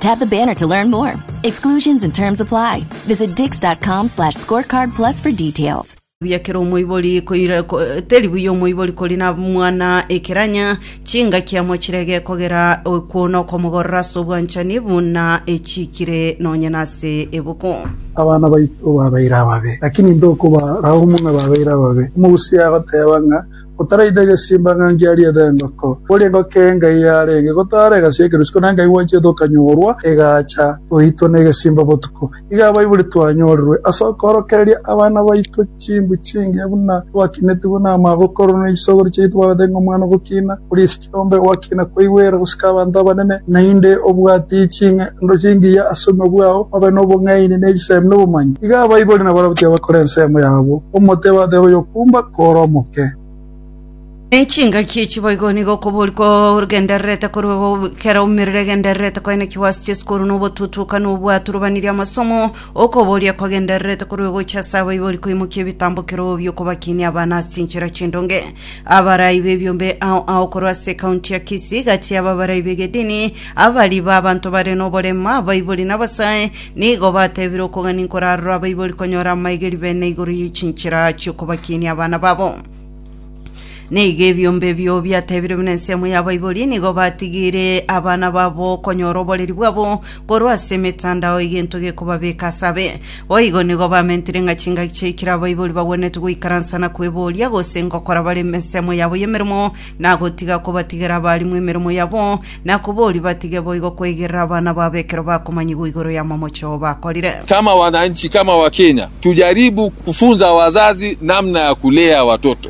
Tap the banner to learn more. Exclusions and terms apply. Visit dix.com slash scorecard plus for details. buya kera omoibori koira- ko- teri buya omoibori kori na mwana ekeranya chingaki amo chirege kogera okwona okomogorora ase obwanchani buna echikire nonye nase ebuku abana baito babeire ababe, lakini intwe okobarao muna babeire ababe. Omogusi agoteeba ng'a Otaraite egesimba ng'a ngiarie ere engoko, kore engoko eye ngai yarenge gotaara egasia ekerusuko, na ngai gwancherete okanyorwa egaacha goitwa negesimba botuko. Iga abaibori twanyorirwe ase okoorokereria abana baito chinguru chingiya buna twakinetigwe namagokorwa na isogoro chiaito barabete ng'a omwana ogokiina oria esike. Nombe ogokina kwaigwere gosika abanto abanene, naende obwate ching'endo chingiya ase obogima bwao, obe nobong'aini ne chisemi nobomanyi. Iga abaibori na abarabwo tibabakora ensemo yabo, omote bateba oyokumba kore omoke. Ne chingaki echi boigo nigo okobori kogendererete korwa kera omerero egendererete koenekigwa ase chisukuru, na obotutuka, na obwaturubaniria amasomo. Okoboria kwagendererete korwa gocha ase abaibori koimokia ebitambokero bi'okobakinia abana ase enchera chindonge. Abarai b'ebiombe ao ao korwa ase ekaunti ya Kisii, gati yabo abarai b'egedini, abari b'abanto bare noborema, abaibori na abasae, nigo batebire okogania nkorarora abaibori konyora amaegeri bene igoro ye chinchera chi'okobakinia abana babo. Nigo ebiombe ebio biatebire buna ensemo y'abaibori nigo batigire abana babo konyora oboreri bwabo korwa ase emetandao egento gekobabeka ase abe. Boigo nigo bamentire ng'a chingaki chiaikire abaibori bagwenerete goikaransa na kweboria, gose ngokora bare ensemo yabo y'emeremo, na gotiga kobatigera abaalimu emeremo yabo, na koboria batige boigo kweigerera abana babo ekero bakomanyigwa igoro y'amamocho bakorire. Kama wananchi, kama wakenya, tujaribu kufunza wazazi namna ya kulea watoto.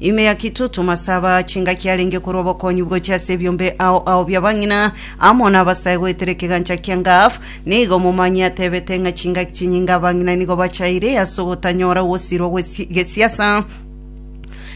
Ime ya kitutu masaba chingaki arenge korwa obokonyi gochia ase ebiombe ao ao bi'abang'ina amo nabasae goetera ekegancha kia Gaaf, nigo momanye atebete ng'a chingaki chinyinge abang'ina nigo bachaire ase ogotanyora ogosirwa gwe gesiasa.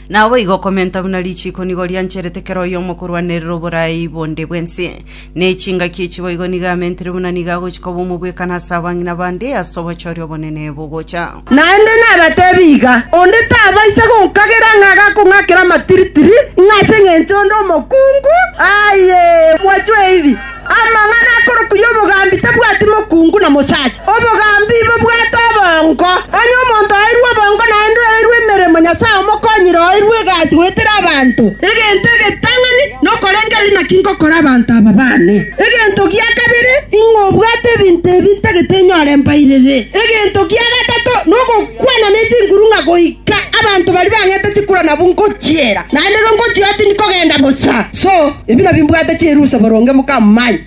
Naboigo komenta buna richiiko nigo riancherete kera oyomo korwanerera oborai bonde bw'ense. Ne chingaki echi boigo nigo amentire buna nigo agochia koba omobwekano ase abang'ina bande ase obochooria obonene bogocha. Naende nabateebie iga, onde tabaisa gonkagera ng'a agakong'akera amatiritiri, ng'a ase engencho onde omokungu, aye, mwachwe ebi, amang'ana akorokwa y'obogambi tabwati mokungu na mosacha, obogambi bobwate obongo. Onye omonto oeirwe obongo naende oeirwe emeremo, Nyasae omokonyire oeirwe egasi goetera abanto egento egetang'ani. Nokorengera naki ngokora abanto aba baane. Egento gia kabere, ing'o obwate ebinto ebi ntagete nyore mbairere? Egento gia gatato nogokwana ne chinguru ng'a goika abanto baria bang'ete chikura nabwo ngochiera, naende igo ngochia oo tindi kogenda bosa. So, ebi nabio mbwate chirusa boronge mokamanya.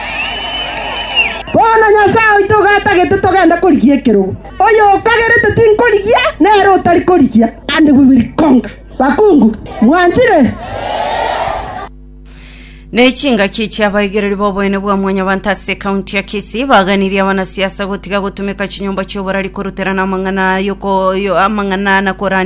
Bono Nyasae oito igo atagete togende korigia ekerogo. Oyokagerete tinkorigia, nere otari korigia, ande bwe biri konga. Bakungu, mwanchire? Ne chingaki chi'abaigereri b'oboene bwa mwanyabanto ase ekaunti ya Kisii baganirie abanasiasa gotiga gotumeka chinyomba chi'oborari koruterana amang'ana yoko yo amang'ana na korandi